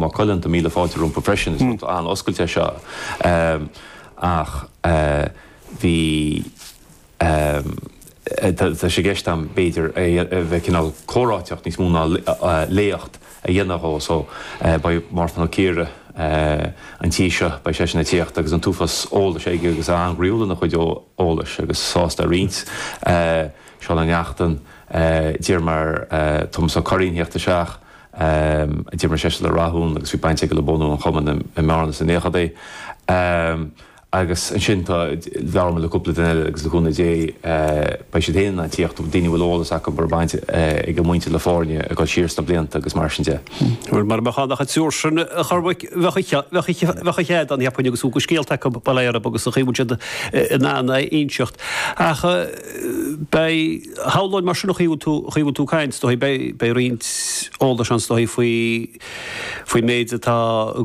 Maigh Cuilinn, tá míle fáilte rompu freisin. Is rud an-oscailte é seo. Ach bhí, tá sé i gceist agam b'fhéidir a bheith cineál comhráiteach níos mó ná léacht a dhéanamh dhó. So beidh Mártan Ó Ciardha an tí seo, beidh seisean ag tíocht agus an t-uafás eolais aige agus é an-ghroíúil ina chuid eolais agus sásta a roinnt. Seán Ó Neachtain, d'iarr mé ar Tomás Ó Curraoin a thíocht isteach. a d'imir seisean le Rathún agus bhí baint aige le bunú an Chumainn i mBearna sna naochadaí agus ansin tá, labhair mé le cúpla duine eile agus le cúnamh Dé beidh siad féin in ann tíocht, daoine a bhfuil eolas acu a raibh baint ag a muintir le foirne ag dul siar sna blianta agus mar sin de. Bhuel, mara mbeadh ann ach an triúr sin a Chormaic bheadh, bheadh, bheadh ócáid ann cheapfainn agus a bhfuil de scéalta acu bail orthu agus an chaoi a bhfuil siad in ann é a inseacht ach, beidh, shamhlóinn mar sin an chaoi a bhfuil tú, an chaoi a bhfuil tú ag caint, is dóigh, beidh, beidh roinnt eolais ann is dóigh faoi, faoin méid atá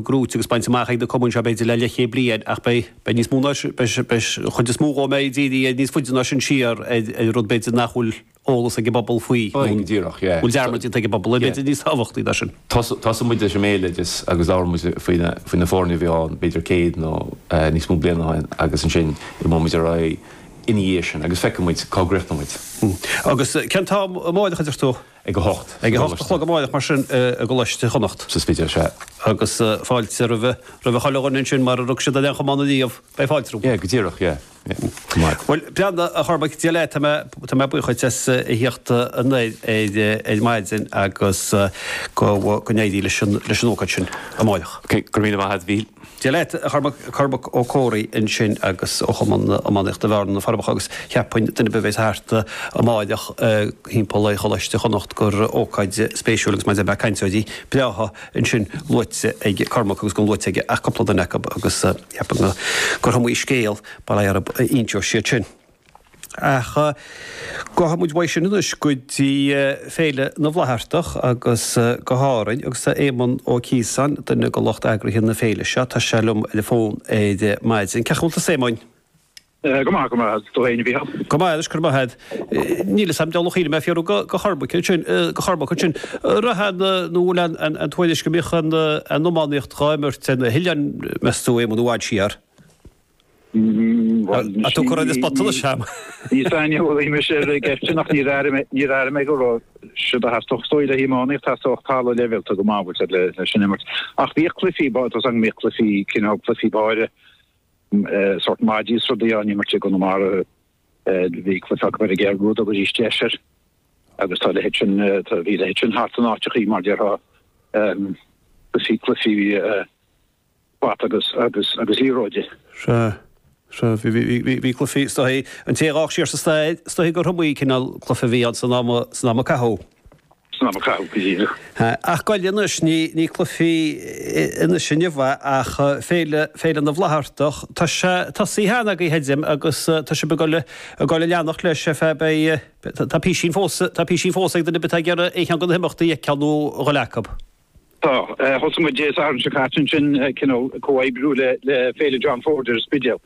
gnóite agus bainte amach ag na cumainn seo b'fhéidir le leithchéad bliain ach beidh, beidh níos mó ná sin, beidh, beidh an chuid is mó dhó b'fhéidir ag díriú níos faide ná sin siar ar, ar rud b'fhéidir nach bhfuil eolas ag an bpobal faoi nó a bhfuil dearmad déanta ag an bpobal air b'fhéidir níos tábhachtaí ná sin. Tosóidh muid leis an mbéaloideas agus labhróidh muid faoi na, faoi na foirne a bhí ann b'fhéidir céad nó níos mó bliain ó shin agus ansin imeoidh muid ar aghaidh, ina dhiaidh sin agus feicfidh muid cá gcríochnóidh muid. Agus cén t-am amáireach, a deir tú? Ag a hocht. Ag a hocht a chlog amáireach mar sin i gColáiste Chonnacht. Sa Spidéal, sea. Agus fáilte roimhe, roimhe chuile dhuine ansin mara rug siad ar aon chamán ariamh, beidh fáilte rompu. Yeah, go díreach, yeah, yeah. Go maith. Bhuel, breathnaigh, a Chormaic, Dia leat, tá mé, tá mé buíoch dhuit as a thíocht anoir ar, ar maidin agus go, go n-éirí leis an, leis an ócáid sin amáireach. Okay, go raibh míle maith agat, Mhíchíl. Dia leat, a Chormaic, Cormac Ó Comhraí ansin agus ó Chumann Iománaíochta Bhearna, Na Forbacha, agus cheapfainn duine ar bith a bhéas thart amáireach thimpeall ar Choláiste Chonnacht gur ócáid spéisiúil agus mar a deir mé cainteoirí breátha ansin luaite ag Cormac agus gan luaite aige ach cúpla duine acu agus cheapfainn gurb iomaí scéal bail orthu iontu siad sin. Ach gabhfaidh muid uaidh sin anois go dtí Féile na bhFlaitheartach agus go hÁrainn agus tá Éamon Ó Ciosáin, duine de lucht eagraithe na féile seo, tá sé liom ar an bhfón ar maidin. Cén chaoi a bhfuil tusa a Éamoin. Go maith, go maith, tú féin a Mhícheál. Go maith anois, go raibh maith agat. Níl 'fhios a'm, diabhal ar chuimhnigh mé fiafraí de Chormac ansin, de Chormac ansin. Raibh aon, nó bhfuil aon tuairisc go mbíodh an iománaíocht dhá imirt ar na hoileáin meas tú a Éamoin i bhfad siar? Tá tú ag cur an spotsolais orm. Ní saineolaí mise ar an gceist sin ach níor airigh mé, níor airigh mé go raibh siad a' teacht chun cinn le hiománaíocht, teacht go dtí an leibhéal go maith a bhfuil siad le, leis an imirt. Ach bhíodh cluichí, ba, tusa an, bhíodh cluichí, cineál cluichí báire, sórt maidí is rudaí á n-imirt i gConamara, bhí cluiche acu ar an gCeathrú a dtug Ais is Deis air agus tá a leithéid sin, tá, bhí a leithéid sin thart in áiteachaí mar déarfá, cluichí, cluichí, bata agus, agus, agus liathróid. Sea, sea. Bhí, bhí, bhí, bhí, bhí cluife istoiche. An té a dh'fhág siar sa staid, stoiche go Tomaí, cineál cluife a bhí ann san am a, san am a caitheadh. San am a caitheadh, go díreach. Sea. Ach goil anois, ní, ní cluife anois inniu é ach Féile, Féile na bhFlaitheartach. Tá sé tosaithe cheana agaibh, creidim, agus tá sibh ag goil, ag goil a leanacht leis ar feadh, beidh, tá písín fós, tá písín fós ag duine ar bith atá ag iarraidh aon cheann de na himeachtaí a fheiceáil nó a ghoil acu. Tá. Thosaigh muid Dé Sathairn seo caite ansin, cineál comhoibriú le Féile John Ford ar an Spidéal,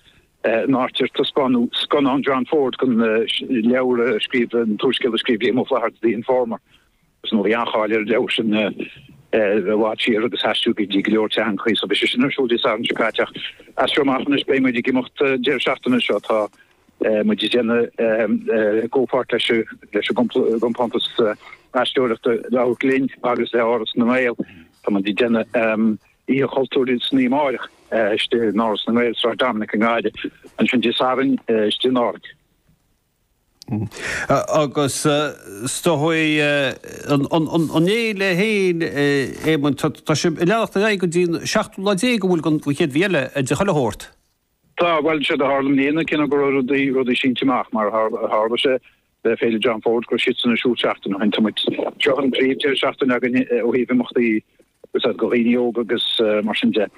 in áit ar taispeánadh scannán John Ford den leabhar a scríobh, an t-úrscéal a scríobh Liam Ó Flaithearta, The Informer. Mar bhí an-cháil ar an leabhar sin i bhfad siar agus aistríodh í go go leor teangacha so bhí sé sin ar siúl Dé Sathairn seo caite. Ach as seo amach anois beidh muid ag imeacht an deireadh seachtaine seo, tá, muid ag déanamh comhpháirt leis an gcompántas aisteoireachta Beartla King agus le hÁras na nGael. Tá muid ag déanamh Oíche Chultúir san oíche amáireach istigh in Áras na nGael, Sráid Dominic i nGaillimh, ansin Dé Sathairn istigh in Árainn. Agus stopfaidh an lae le haon Éamonn, tá sé ag leanacht ar aghaidh go dtí an 17ú lá den chéad mhí eile de, chuile shórt. Tá, bhuel, séard a tharla i mbliana, cinneadh go raibh rudaí, rudaí sínte amach, mar a tharla sé le Féile John Ford, go raibh sé sin ar siúl seachtain ó shin, tá muid, seo an tríú deireadh seachtaine againn ó thaobh imeachtaí, tá a fhios agat, do dhaoine óga agus mar sin de,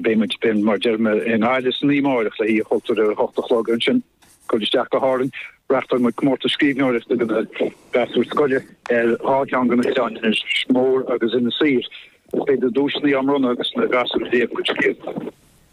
beidh muid, beidh, mar a deir mé, i nGaillimh san oíche amáireach le hoíche chultúir ar a hocht a chlog, ansin cuairt isteach go hÁrainn, reachtáil muid comórtas scríbhneoireachta do na gasúir scoile ar dhá cheann de na hoileáin, Inis Mór agus Inis Oírr, beidh na duaiseanna á mbronnadh agus na gasúir ag léamh a gcuid scéalta.